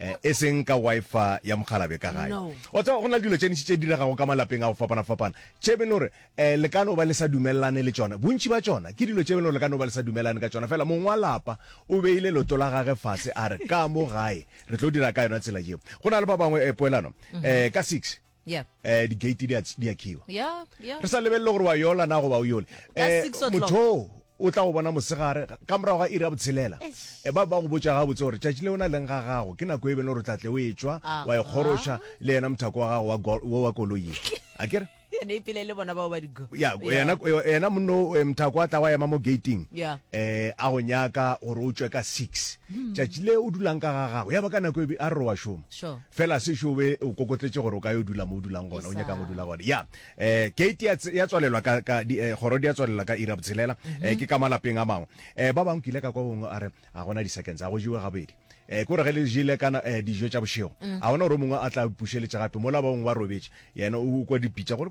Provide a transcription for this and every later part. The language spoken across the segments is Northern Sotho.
Eh, e seng ka wifi ya mogalabe ka gae o tseba go na le dilo tšenitši tše diregago ka malapeng a go fapana-fapana tše bene gore um eh, le ka no ba le sa dumelelane le tsona bontši ba tsona ke dilo tše bene gore le ka no ba le sa dumelelane ka tsona fela mong wa lapa o beile loto la gage fase a re ka mo gae re tlo dira ka yona tsela jeo go na le ba bangwe eh, poelano um ka six Yeah. eh di-gate di a ts- di a khiwa Yeah, yeah. re sa lebelele gore wa yola na goba o yole Ka Eh, six o'clock. motho oo o tla go bona mosegare ga- ka morago ga iri ya botshelela Eh, ba ba go botsa ga botse gore tšatši le o na leng ga gago ke nako e bene gore o tlatle o e tswa Aha. wa ekgoroša le yena mothako wa gago wa go- wo wa koloi e. a kere Ene e pele le bona bao ba digo. ya yena yena monno eh, mothako a tla wa ema mo gating Yeah. eh a go nyaka gore o tswe ka six tšatši le o dulang ka ga gago ya ba ka nako e be a re wa šoma Sure. fela se šo be o kokotletše gore o ka yo dula mo o dulang gona o nyakang go dula gona ya um kate ya tswalelwa ka eh, kgoro di ya tswalelwa ka ira botshelela um eh, ke ka malapeng a mangwe um ba bangwe kile ka kwa gongwe a re ga gona di-seconds a go jewe gabedi um kore ge le jele kana um dijo tša bošego mm. ga gona gore o mongwe a tla pušeletša gape mola ba bangwe ba robetše yena o kwa dipitša gore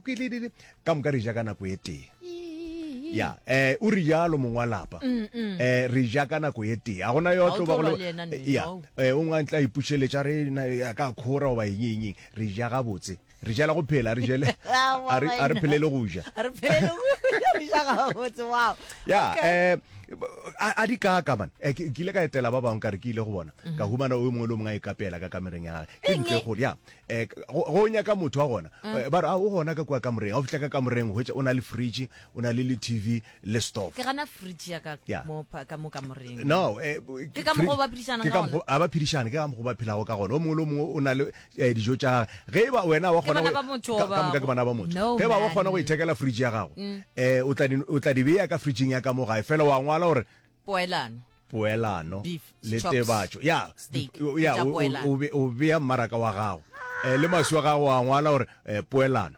ka moka re ja ka nako e tee ya eh o re jalo mongwe wa lapa eh re ja ka nako e tee a gona yo tlo ba go ya eh o ngwa ntla ipušeletša re ya ka khora oba eng eng re ja ga botse re jela go phela re jele a re phelele go ja re phelele go ja re ja ga botse wow ya eh a di ka ka man eh, ke ile ka etela ba bang ka re ke ile go bona ka humana o mongwe le mongwe a ikapela ka kamereng ya gage ke ntle go ya Eh, go go nyaka motho wa gona mm. eh, ba re a ah, o gona ka kua kamoreng ga o fitlha ka kamoreng hwetša o na le fridge o na le le tv le stove ke gana fridge ya ka mo ka mo kamoreng no eh, ke ka mogo ba phedišana ka gona a ba phedišana ke ka mogo ba phelago ka gona o mongwe le mongwe o na le eh, dijo tša ge e ba wena wa gona ka moka ke bana ba motho ge ba wa gona go ithekela fridge ya gago mm. eh o tla o tla di beya ka fridgeng ya ka mo gae fela wa ngwala gore Poelano. Poelano. Beef, le chops, tebatšo ya steak, di- o- ya, tša o- o- poelano. o be- o bea mmaraka wa gago Eh, le maswi wa gago a ngwala gore eh, poelano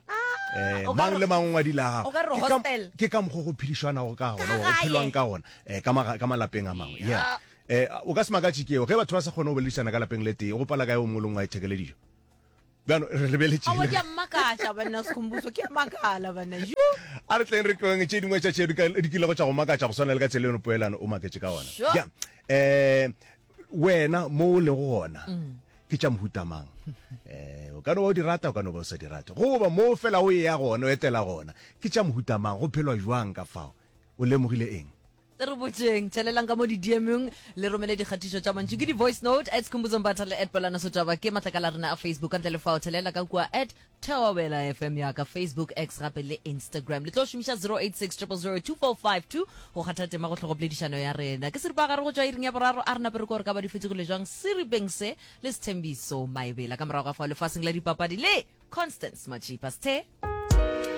Eh, o ka mang re- le mang o ngwadile a o ka re gago Ke ka- hostel. ke ka mokgwa go phedišwanago ka gona go gae. phelwang ka gona eh, ka maga- ka malapeng a mangwe yeah. Eh, o ka se makatše keo ge batho ba sa kgone go boledišana ka lapeng le tee go pala kae o mongwe le mongwe a ithekele dijo bjalo re lebeletše Awa ke a mmakatša banna sekhombuso ke a makala banna ju a re tleng re tlong tše dingwe tša tšeo di ka- di kilego tša go makatša go swana le ka tsela eno poelano o maketše ka ona Sure. Ja, eh wena mo o lego gona ke tša mohutamang eh o ka no ba o di rata o ka no ba o sa di rate goba mo fela o eya gona o etela gona ke tša mohutamang go phelwa jwang ka fao o lemogile eng E re botšeng, tšhelelang ka mo didiemong, le romele dikgatišo tša mantšu ke di-voice note at Skhumbuzo Mbatha le at Bolana Sotšaba. Ke matlakala a rena a Facebook. Ka ntle le fao, tšhelela ka kua at Thobela FM ya ka Facebook, X gape le Instagram. Le tlo šomiša 086 000 2452 go kgatha tema go hlogo poledišano ya rena. Ke seripagare go tšwa iring ya boraro a re nape re ko re ka ba di fetogile jwang seripeng se le Sethembiso Maebela. Ka morago ga fao lefaseng la dipapadi le Constance Matšipa. Sethe!